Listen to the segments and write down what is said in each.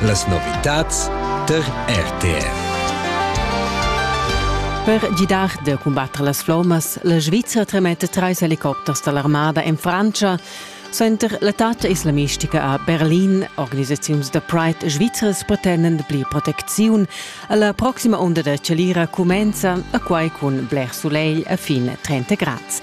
Las novitads tar RTR. Per gidar da cumbatter las flommas, la Svizra tremetta trais helicopters da l'armada en Frantscha. Center l'età islamistica a Berlin, organisaziuns da Pride svizras pretendend pli protecziun. La proxima onda da chalira cumenza a quai cun bler sulegl a fin 30 grads.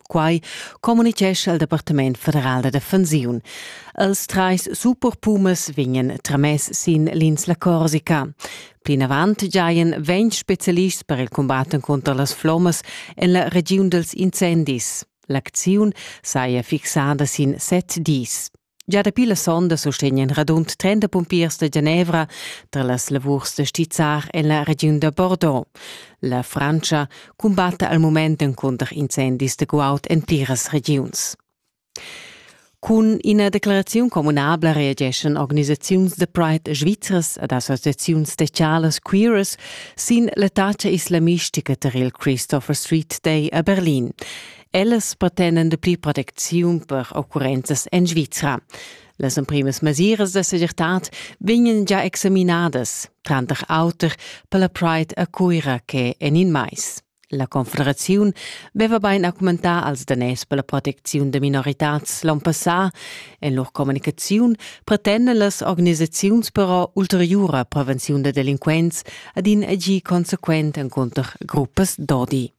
Quai communitgescha il Departament federal da defensiun. Els trais superpumas vegnan tramess sin l'insla Corsica. Plinavant giajan ventg spezialists per il cumbat cunter las flommas en la regiun dels incendis. L'acziun saja fixada sin set dis. Gia dapi la sonda sustegnan radund 30 pumpiers da Genevra tra las lavurs da stizzar en la regiun da Bordeaux. La Frantscha cumbatta al mument encunter incendis da guaud en pliras regiuns. Cun ina declaraziun communabla reageschan organisaziuns da Pride svizzras ed associaziuns specialas queeras sin l'attacca islamistica tar il Christopher Street Day a Berlin. Ellas pretendan dapli protecziun per occurrenzas en Svizra. Las emprimas mesiras da segirtad vegnan già examinadas, tranter auter per la Pride a Cuira che en in mais. La Confederaziun veva bein argumentà als daners per la protecziun da minoritads l'on passà. En lur communicaziun pretendan las organisaziuns però ulteriura prevenziun da delinquents ad in agir consequent encunter gruppas d'odi.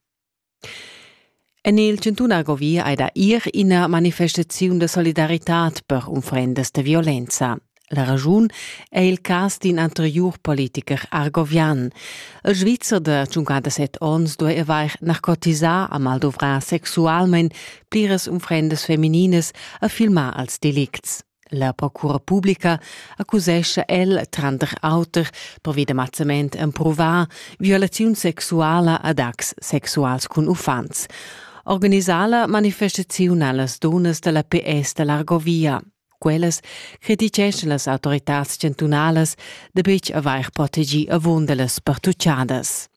En il Chantun Agovi ei da ir ina manifestaziun de solidaritad per unfrendas de violenza. La ragiun è il cas d'in anterior politiker argovian. Il Svizzer de 57 ons due avair narcotisà a mal dovrà sexualment pliras unfrendas feminines a filmar als delicts. La procura publica accusescha el, tranter auter, pervi da mazzament emprovà, violaziun sexuala ad acts sexuals cun uffants. Organisala manifestaziun allas dunas da la PS da l'Argovia. Quellas criticeschan las autoritads chantunalas da betg avair protegì avunda las pertucciadas.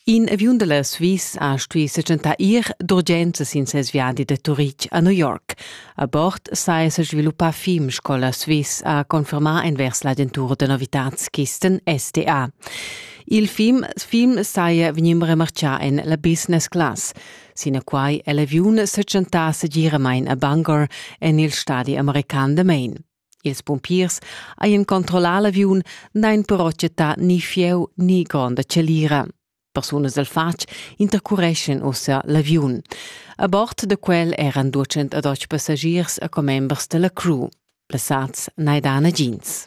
In aviun da la Sviss ha stuì setgentar ir d'urgenza sin ses viadi da Turitg a New York. A bord saja sa sviluppà film sco la Sviss ha confermà envers l'agentura da novitads Kisten SDA. Il film, film saja vegnì remartgà en la business class. Sinaquai è l'aviun setgentà segiramain a Bangor en il stadi american da Maine. Ils pumpiers hajan controllà l'aviun, n'hain però chattà ni fieu ni gronda chalira. Persunas dal fatg intercureschan ussa l'aviun. A bord da quel eran 212 passagiers e commembers da la crew. Plasads n'hai dà nagins.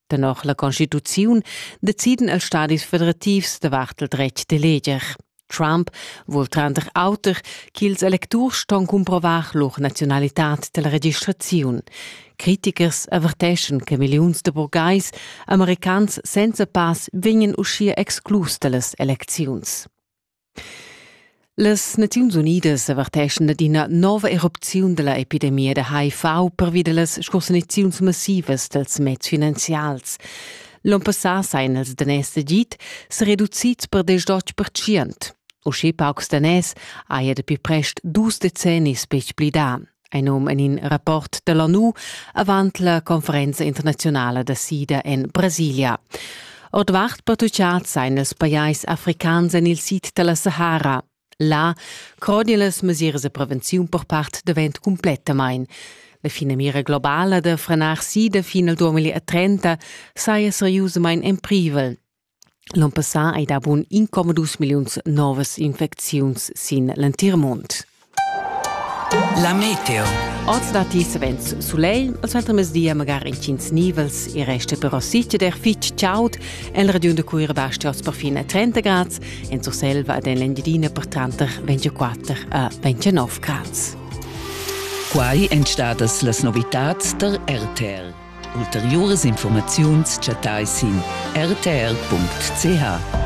Danach la Constituziun deciden els stadis federativs davart il dretg d'eleger. Trump vuol tranter auter ch'ils electurs ston cumprovar lur nazionalitad della registraziun. Critichers averteschan che milliuns de burgais americans senza pass vegnan uschia exclus dallas elecziuns. Las Naziuns Unidas averteschan ad ina nova erupziun dalla epidemia da HIV pervi dallas scursaniziuns massivas dals meds finanzials. L'onn passà sajan els daners d'agid sa reducids per desch-otg percent. Uschè paucs daners haja dapi prest dus decennis betg pli dà. Ein num en in rapport dall'ONU avant la conferenza internazionala da sida en Brasilia. Ordvart pertucciads ein els pajais africans en il sid dalla Sahara. Là croden las mesiras de prevenziun per part davent completamain. La finamira globala da frenar sida fin al 2030 saja seriusamain en privel. L'on passà ei davon incommodus milliuns novas infecziuns sin l'entir mund. La meteo. Oz datti savens sulegl, il suentermezdi magari intgins nivels, il resta però sitider fitg chaud. En la regiun da Cuira basti oz perfin 30 grad, en Surselva ed en l'Engiadina per tranter 24 e 29 grad. Quai èn stadas las novitads da RTR. Ulteriuras informaziuns chattai sin rtr.ch.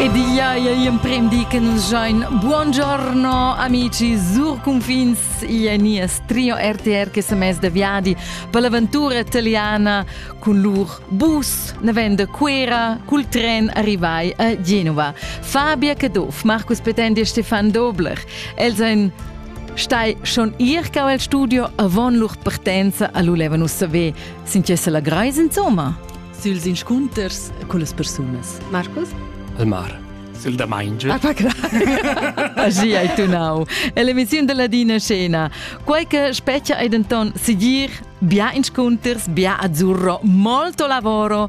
Ed ia emprendi che nus join Buongiorno amici sur confins ia nias trio RTR che se mes de viadi per l'aventura italiana con lur bus navenda Cuera col tren arrivai a Genova. Fabia Caduff, Marcus Petendi e Stefan Dobler. Els ein Stai schon ir cau el studio avon lur partenza a l'ulevan ussa ve, sin che se la greis insomma. Süls inscunters con las persunas. Marcus? Elmar. Sil da Mainge. Ah, pacra. Aschi hai tunau. È l'emissione della Dina Scena. Quei che specchia è denton sigir bia inscunters, bia azzurro, molto lavoro,